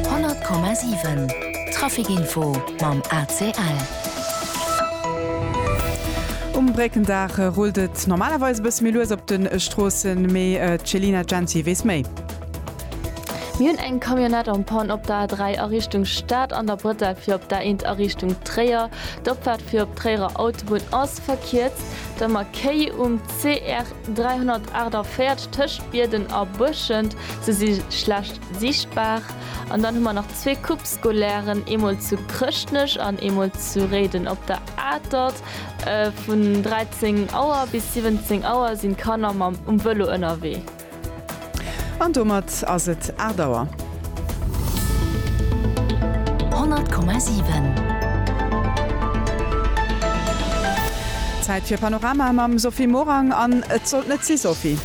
100,7 Traficinfo mam ACL. Um Bréckendag rullt et normalerweis e bësse méi lues op de Stroossen, mee d'Chelina Jency weess méi. Mir hunn eng Camionnette en panne op der A3 a Richtung Stad an der Bretelle fir op d'A1 a Richtung Tréier. D'Opfaart fir op d'Tréierer Autobunn ass. verkierzt, der Makéi um CR 348 tëscht Bierden a Buerschent, se si schlecht sichtbar, an dann hu mer nach zwee Coupe scolairen, eemol zu Chrëschtnech an eemol zu Réiden op der Atert. Vun 13 Auer bis 17 Auer sinn d'Kanner mam um Vëlo ënnerwee. An domat ass et 8 Auer. 100,7. Zäit fir Panorama mam Sophie Morang an et sollt net si, Sophie.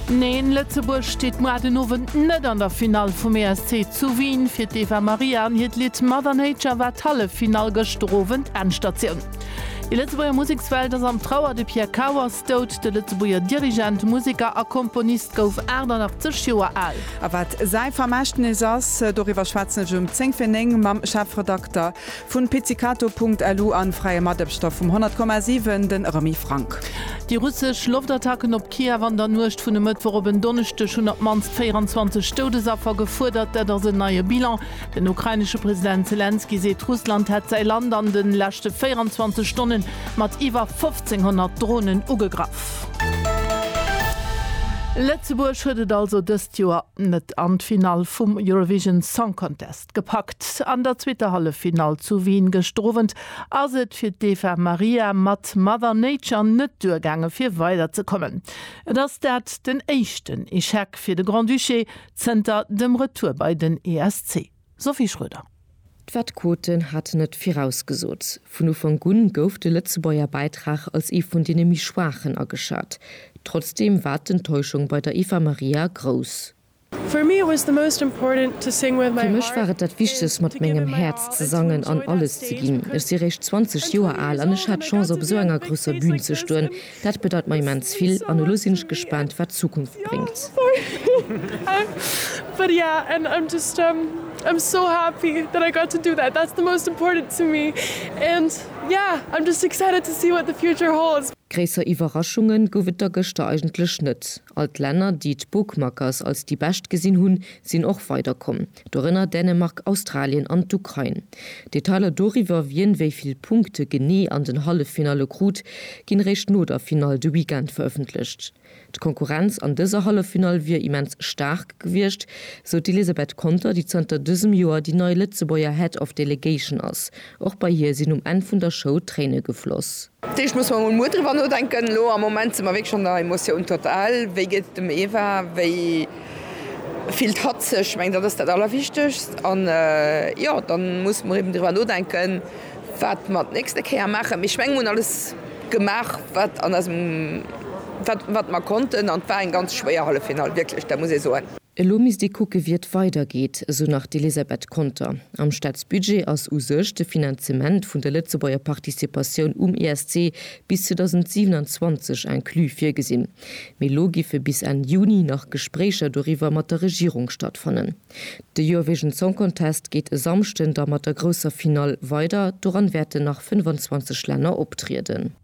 Neen, Lëtzebuerg steet moar den Owend net an der Finall vum ESC zu Wien. Fir d'Eva Maria an hiert Lidd Mother Nature war d'Halleffinall gëschter Owend Endstatioun. Déi Lëtzebuerger Musekswelt ass am Trauer, de Pierre Kauers. Dout, De Lëtzebuerger Dirigent, Museker a Komponist gouf 88 Joer al. A wat säi Vermächtnis ass, doriwwer schwätzen ech um 10 fir 9 mam Chefredakter vu Pizzicato Punkt Lu a fräie Matebchter vum 100 Komma 7, de Remy Franck. Déi russesch Loftattacken op Kiew an der Nuecht vun e Mëttwoch op en Donneschdeg hunn op d'mannst 24 Doudesaffer gefuerdert. Dat ass en neie Bilan. Den ukrainesche President Selenskyj seet, Russland hätt säi Land an de leschte 24 Stonne mat iwwer 1800 Dronen ugegraff. Lëtzebuerg huet et also dëst Joer net an d'Finall vum Eurovision Song Contest gepackt. An der zweeter Halleffinall zu Wien gëschter Owend ass et fir d'Eva Maria mat Mother Nature net duergaange fir weider ze kommen. Et ass dat den éischten Echec fir de Grand-Duché zënter dem Retour bei den ESC. Sophie Schroeder. D'Fed Quoten hat net virausgesot. Vun Ufank un gouf de Lëtzebuerger Bäitrag als ee vun deene méi schwaachen ageschat. Trotzdeem war d'Enttäuschung bei der Eva Maria grouss. Fir mech war et dat Wichtegst mat mengem Häerz ze sangen an alles ze ginn. Ech si réischt 20 Joer al an ech hat d'Chance op esou enger grousser Bün ze stoen, Dat bedeit mer immens vill an elo sinn ech gespaant wat d'Zukunft bréngt. Gréisser Iwwerraschunge gouf et da gëschter eigentlech net. All d'Länner, déi d'Bookmakers als déi bescht gesinn hunn, sinn och weiderkomm. Dorënner Dänemark, Australien an d'Ukrain. Detailer doriwwer, wien wéi vill Punkte genee an den Halleffinalle krut, ginn eréischt no der Finall de Weekend verëffentlecht. D'Konkurrenz an dëser Halleffinall wier immens staark gewiescht, sou d'Elisabeth Conter, déi zënter dësem Joer déi nei Lëtzebuerger Head of Delegation ass. Och bei hir sinn um Enn vun der Show Tréine gefloss. Dat heescht, muss mer emol muer driwwer nodenken. Elo am Moment si mer wierklech an der Emotion totale. Wéi geet et dem Eva? Wéi fillt hatt sech? Ech mengen, dat ass dat Allerwichtegst. An jo, da musse mer eben driwwer nodenken, wat mer d'nächste Kéier maachen. Mee ech mengen, mir hunn alles gemaach, wat an eisem, wat, wat mer konnten. An et war eng ganz schwéier Halleffinall, wierklech, dat muss ee soen. Elo misst ee kucke wéi et weidergeet, esou nach d'Elisabeth Conter. Am Staatsbudget ass u sech de Finanzement vun der Lëtzebuerger Participatioun um ESC bis 2027 inclus virgesinn. Mee elo giffe bis Enn Juni nach Gespréicher doriwwer mat der Regierung stattfannen. De Eurovision Song Contest geet e Samschden da mat der grousser Finall weider. Doran wäerten nach 25 Länner optrieden.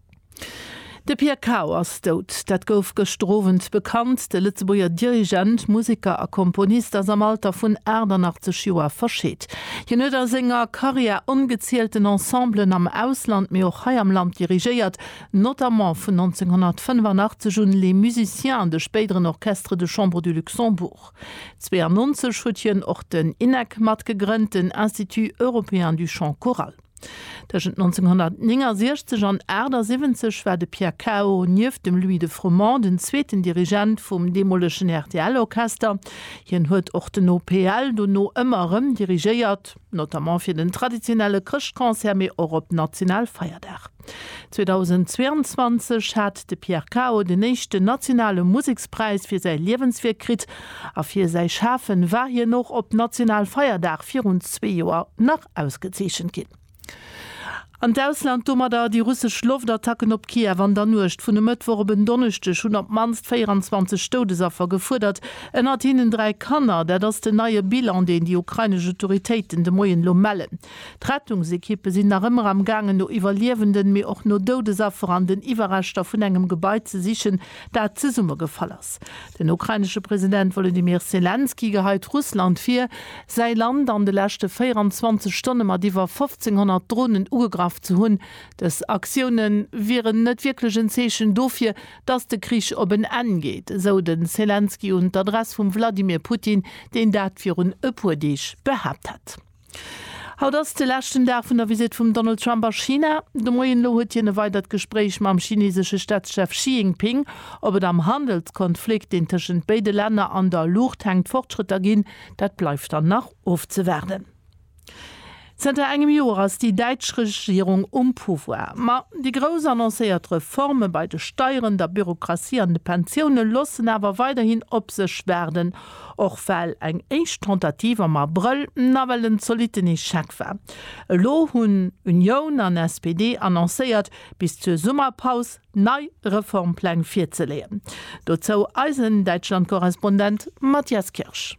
De Pierre Cao ass dout. Dat gouf gëschter Owend bekannt. De Lëtzebuerger Dirigent, Museker a Komponist ass am Alter vun 88 Joer verscheet. Hien huet a senger Karriär ongezielten Ensemblen am Ausland, mee och hei am Land dirigéiert, notamment vun 1985 un Les Musiciens, de spéideren Orchestre de Chambre du Luxembourg. 92 huet hien och den INEC matgegrënnt, den Institut Européen du Chant Choral. Tëschent 1969 an 78 war de Pierre Cao nieft dem Louis de Froment den zweeten Dirigent vum deemolegen RTL-Orchester. Hien huet och den OPL dono ëmmer erëm dirigéiert, notamment fir den traditionelle Chrëschtconcert, mee och op Nationalfeierdag. 2022 hat de Pierre Cao den éischten nationale Musekspräis fir säi Liewenswierk kritt a fir säi Schafe war hien och op Nationalfeierdag virun zwee Joer nach ausgezeechent ginn. An d'Ausland domadder, Déi russesch Loftattacken op Kiew an der Nuecht vun e Mëttwoch op en Donneschdeg hunn op d'mannst 24 Doudesaffer gefuerdert, ënnert hinnen dräi Kanner. Dat ass den neie Bilan, deen déi ukrainesch Autoritéiten de Moien elo mellen. D'Rettungsekippe sinn nach ëmmer am gaangen no Iwwerliewenden, mee och no Doudesaffer an den Iwwerreschter vun engem Gebai ze sichen, dat zesummegefall ass. Den ukrainesche President Wolodymyr Selenskyj geheit Russland vir, säi Land an de leschte 24 Stonne mat iwwer 1.500 Dronen ugegraff ze hunn. Dës Aktioune wieren net wierklech en Zeechen dofir, datt de Krich op en Enn geet, esou de Selenskyj un d'Adress vum Wladimir Putin, deen dat virun e puer Deeg behaapt hat. Haut ass de leschten Dag vun der Visitt vum Donald Trump a China. De Moien elo huet hien e weidert Gespréich mam chinesesche Staatschef Xi Jinping. Ob et am Handelskonflikt, deen tëschent béide Länner an der Luucht hänkt, Fortschrëtter ginn, dat bleift dann nach ofzewaarden. Zënter engem Joer ass déi däitsch Regierung um Pouvoir. Ma déi grouss annoncéiert Reforme bei de Steieren, der Bürokratie an de Pensioune loossen awer weiderhin op sech waarden. Och well eng éischt Tentative am Abrëll nawell en zolitten Echec war. Elo hunn Unioun an SPD annoncéiert, bis zur Summerpaus nei Reformpläng virzeleeën. Dozou eisen Däitschlandkorrespondent Matthias Kirsch.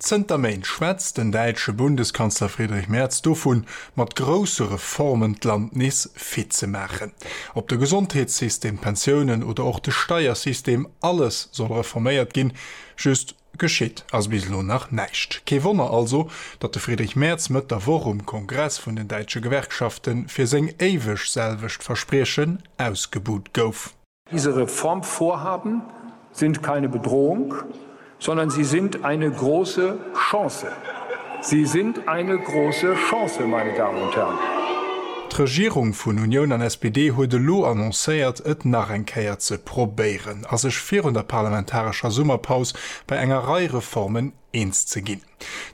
Zënter Méint schwätzt den däitsche Bundeskanzler Friedrich Merz dovun, mat grousse Reformen d'Land nees fit ze maachen. Ob de Gesondheetssystem, d'Pensiounen oder och de Steiersystem, alles soll reforméiert ginn. Just geschitt ass bis elo nach näischt. Kee Wonner also, datt de Friedrich Merz Mëtt der Woch um Kongress vun den däitsche Gewerkschafte fir seng éiweg selwecht Verspriechen ausgebuht gouf. Diese Reformvorhaben sind keine Bedrohung, sondern sie sind eine große Chance. Sie sind eine große Chance, meine Damen und Herren. D'Regierung vun Unioun an SPD huet elo annoncéiert, et nach eng Kéier ze probéieren a sech virun der parlamentarescher Summerpaus bei enger Rei Reformen eens ze ginn.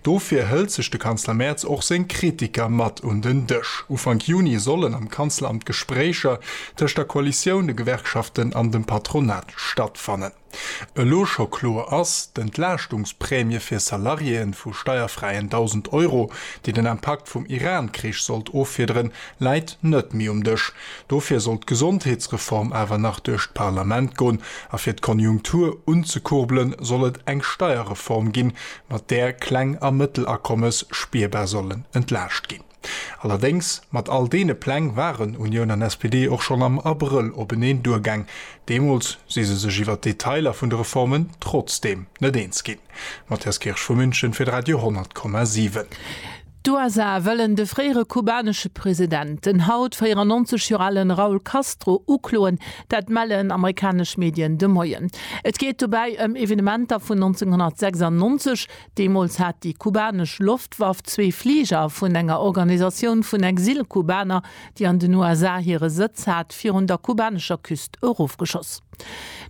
Dofir hëlt sech de Kanzler Merz och seng Kritiker mat un den Dësch. Ufank Juni sollen am Kanzleramt Gespréicher tëscht der Koalitioun, de Gewerkschaften an dem Patronat stattfannen. Elo scho kloer ass, d'Entlaaschtungsprämie fir Salariéeën vu steierfräien 1.000 Euro, déi den Impakt vum Iran-Krich sollt offiederen, läit net méi um Dësch. Dofir sollt d'Gesondheetsreform awer nach duerch d'Parlament gon, a fir d'Konjunktur unzekurbelen, soll et eng Steierreform ginn, mat där Kleng a Mëttelakommes spierbar sollen entlaascht ginn. Allerdéngs, mat all deene Pläng waren Unioun an SPD och schonn am Abrëll openeen duergaang. Deemools si se sech iwwer d'Detailer vun de Reformen trotzdeem net eens ginn. Matthias Kirsch vu München fir d'Radio 100,7. D'USA wëllen de fréiere kubanesche President, den haut 94 Joer ale Raul Castro, ukloen. Dat mellen amerikanesch Medien de Moien. Et geet dobäi ëm Evenementer vun 1996. Deemools hat déi kubanesch Loftwaff zwee Fliger vun enger Organisatioun vun Exil-Kubaner, déi an den USA hire Sëtz hat, virun der kubanescher Küst erofgeschoss.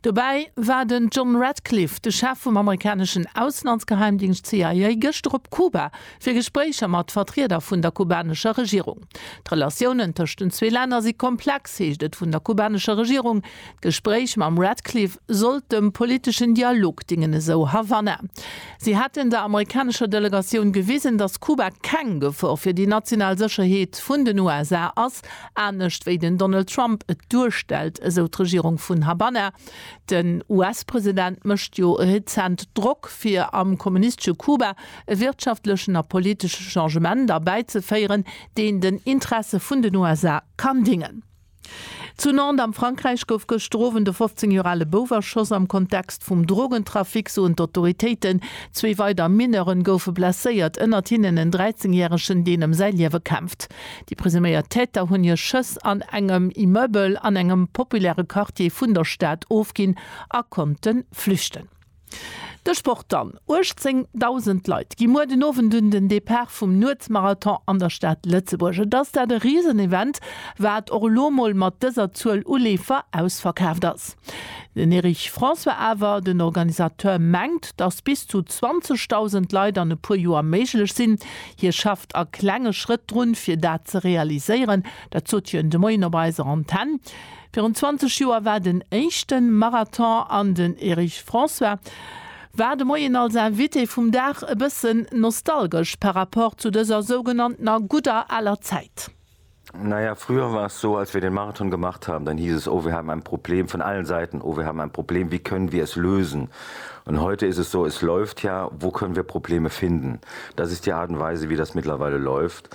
Dobäi war den John Ratcliffe, de Chef vum amerikaneschen Auslandsgeheimdingscht CIA, gëschter op Kuba, fir Gespréicher mat Vertrieder vun der kubanescher Regierung. D'Relatiounen tëscht den zwee Länner si komplex, heescht et vun der kubanescher Regierung. D'Gespréich mam Ratcliffe sollt dem politeschen Dialog dingen, esou Havanna. Si hätten der amerikanescher Delegatioun gewisen, datt Kuba keng Gefor fir déi national Sécherheet vun den USA ass, anescht wéi den Donald Trump et duerstellt, esou d'Regierung vun Habanna. Den US-President mécht jo rezent Drock, fir am kommunistesche Kuba e wirtschaftlechen a politesche Changement erbäizeféieren, deen den Interesse vun den USA kann dingen. Zu Nantes am Frankräich gouf gëschter Owend e 15 Joer ale Bouf erschoss. Am Kontext vum Drogentrafic soen d'Autoritéiten, zwee weider Mineuren goufe blesséiert, ënnert hinnen en 13 Järegen, deen ëm säi Liewe kämpft. Déi presuméiert Täter hunn hir Schëss an engem Immeubel an engem populäre Quartier vun der Stad ofginn a konnte flüchten. De Sport dann, 18.000 Leit gi muer den Owend un den Depart vum Nuetsmarathon an der Stad Lëtzebuerg. Et ass dat e Risenevent, wat och elo mol mat dëser Zuel u Leefer ausverkaaft ass. Den Erich François awer, den Organisateur, mengt, datt bis zu 20.000 Leit an e puer Joer méiglech sinn. Hie schafft a klenge Schrëtt drun, fir dat ze realiséieren. Dat sot hien de Moien op eiser Antenn. Virun 20 Joer war den éischten Marathon an den Erich François war de Moien als Invité vum Dag. E bëssen nostalgesch par rapport zu dëser sougenanntener gudder aler Zäit. Na ja, früher war es so, als wir den Marathon gemacht haben, dann hieß es, oh, wir haben ein Problem, von allen Seiten, oh, wir haben ein Problem, wie können wir es lösen? Und heute ist es so, es läuft ja, wo können wir Probleme finden? Das ist die Art und Weise, wie das mittlerweile läuft.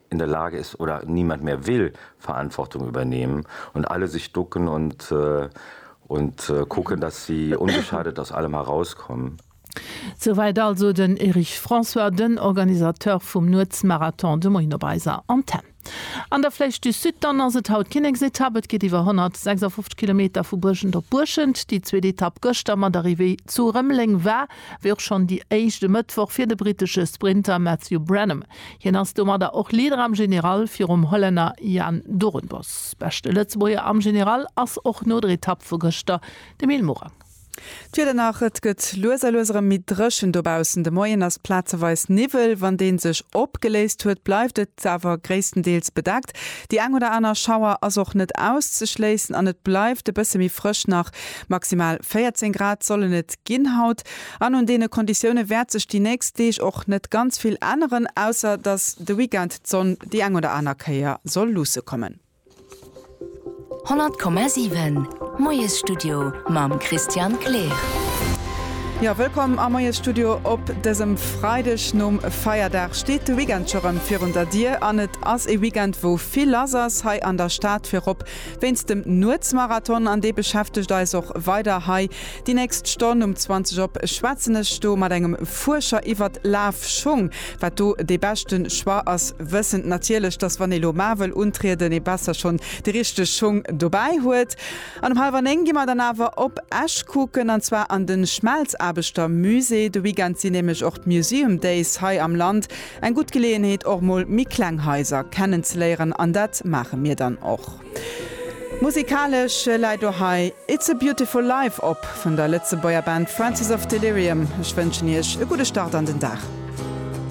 in der Lage ist oder niemand mehr will Verantwortung übernehmen und alle sich ducken und und kucken, dass sie ungeschadet aus allem herauskommen. Souwäit also den Erich François, den Organisateur vum Nuetsmarathon, de Moien op eiser Antenn. An der Flèche du Sud dann ass et haut d'Kinneksetapp. Et geet iwwer 156 Kilometer vu Buerschent op Buerschent. Déi zweet Etapp gëschter mat Arrivée zu Rëmeleng war wéi och schonn déi éischt e Mëttwoch fir de brittesche Sprinter Matthew Brenham. Hien ass domadder och Leader am General virum Hollänner Jan Doornbos. Beschte Lëtzebuerger am General ass och no der Etapp vu gëschter de Mil Morang. D'Wieder nach, Et gëtt lues a lues erëm méi dréchen dobaussen. De Moien ass plazeweis Niwwel, wann dee sech opgeléist huet, bleift et awer gréisstendeels bedeckt. Déi eng oder aner Schauer ass och net auszeschléissen an et bleift e bësse méi frësch, nach maximal 14 Grad sollen et ginn haut. An un deene Konditioune wäert sech déi nächst Deeg och net ganz vill änneren, ausser datt de Weekend d'Sonn déi eng oder aner Kéier soll luusse kommen. 100,7 Moiesstudio mam Christian Kleer. Jo, wëllkomm am Moiesstudio op dësem Freideg nom Feierdag. Steet de Weekend scho rëm virun der Dier? An et ass ee Weekend, wou vill lass ass hei an der Stad, virop wéinst dem Nuetsmarathon. An dee beschäftegt eis och weider hei Déi nächst Stonn um 20 op schwätzen ech do mat engem Fuerscher iwwert Lafschung, wat do dee beschte Choix ass, wëssend natierlech, dass wann ee lo mar wëll untrieden, ee besser schonn de richteg Schung dobäi huet. An um hallwer néng gi mer dann awer op Esch kucken, an zwar an de Schmelzaarbechtermusée. De Weekend sinn nämlech och d'Museum Days hei am Land, eng gutt Geleeënheet och mol méi kleng Haiser kennenzeléieren, an dat maache mir dann och. Musikalesch läit do hei It's a Beautiful Life op vun der Lëtzebuerger Band Francis of Delirium. Ech wënschen iech e gudde Start an den Dag.